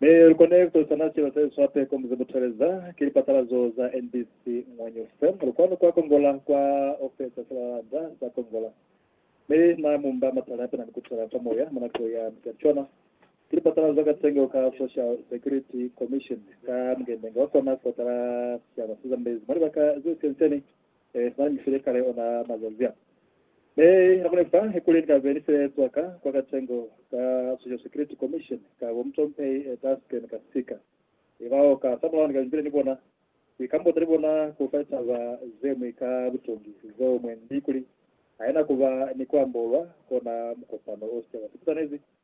Mi lukone kutulisana sicaba se swa peko muze muteleza. Ki lipatalazo za NBC Ngwanyu FM. Lukwanu kwa Kongola kwa ofesa silalanda sa Kongola. Mi na mumba matala apena ni kutela fa moya mwa nako ya mutacwana. Ki lipatalazo ka tengo ka Social Security Commission ka mungendenga wa kona kotala sicaba sezambezi mwa libaka ze sienseni. Ee, Na ni file kale ona mazanzi a. Mi hakuna fa kuli Ni ka be ni file cwaka kwa katengo ka Social Security Commission ka bo mutompehi e taske ni ka sika. I ba o ka samulaho ni ka bile ni bona kwi kambota ni bona ku fa litaba ze mwi ka butongi zeo mwendi kuli haina kuba ni ku ambolwa kona mukopano o se wa sipitanezi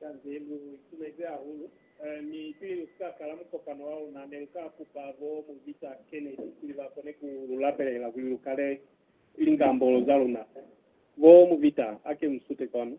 Kanze lu itumezi hahulu, mi pili lu si ka kala mukopano wa luna, ne lu ka kupa bo Mu Victor Kennedy kuli ba kone ku lu lapelela kuli lu kale lingambolo za luna. Bo Mu Victor, ake mu sute kwanu.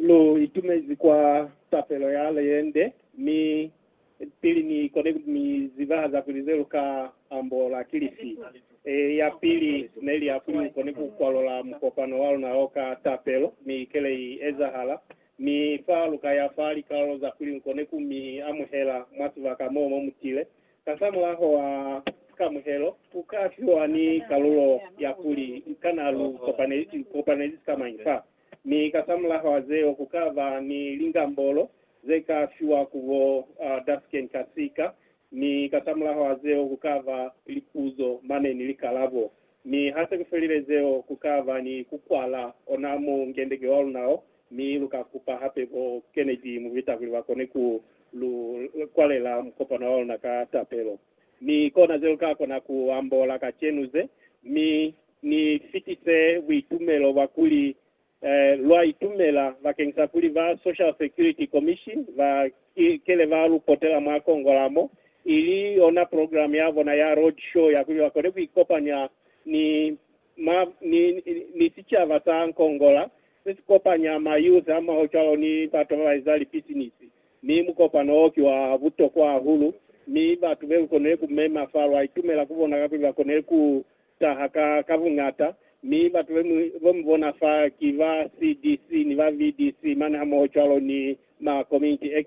Lu itumezi kwa tapelo ya leyende, mi pili ni kone ku mi zibahaza kuli ze lu ka ambola ki lifi. E, ya pili ne li ya kuli u kone ku kwalola mukopano wa luna o ka tapelo, mi kele i ezahala. Mi fa lu ka ya fa likalolo za kuli lu kone ku mi amuhela mwa sibaka mo mo mu tile. Kasamulaho wa sikamuhelo, u ka fiwa ni kalulo ya kuli kana lu kopanezi sikamañi fa. Mi kasamulaho a zeo ku ka ba ni lingambolo ze ka fiwa ku bo Dasken kasika, mi kasamulaho a zeo ku ka ba lipuzo mane ni likalabo. Mi ha se ku felile zeo, ku ka ba ni ku kwala ona mu ngendeke wa luna o, mi lu ka kupa hape bo Kennedy Mubita kuli ba kone ku lu kwalela mukopano wa luna ka tapelo. Mi kona ze lu ka kona ku ambola kacenu ze. Mi. Ni fitise buitumelo bwa kuli lwa itumela bakeng sa kuli ba Social Security Commission ba kele ba lu potela mwa Kongola mo, ili yona program ya bona ya Road Show ya kuli ba kone ku ikopanya ni ma, ni, ni sicaba sa Kongola se si kopanya ma youth hamoho cwalo ni batu ba ba eza lipisinisi. Mi mukopano wo ki wa butokwa hahulu, mi batu be lu konile ku mema fa lwa itumela ku bona kakuli ba konile ku taha ka ka buñata, mi batu bemwi bo mu bona fa ki ba CDC ni ba VDC mane hamoho cwalo ni ma Community X.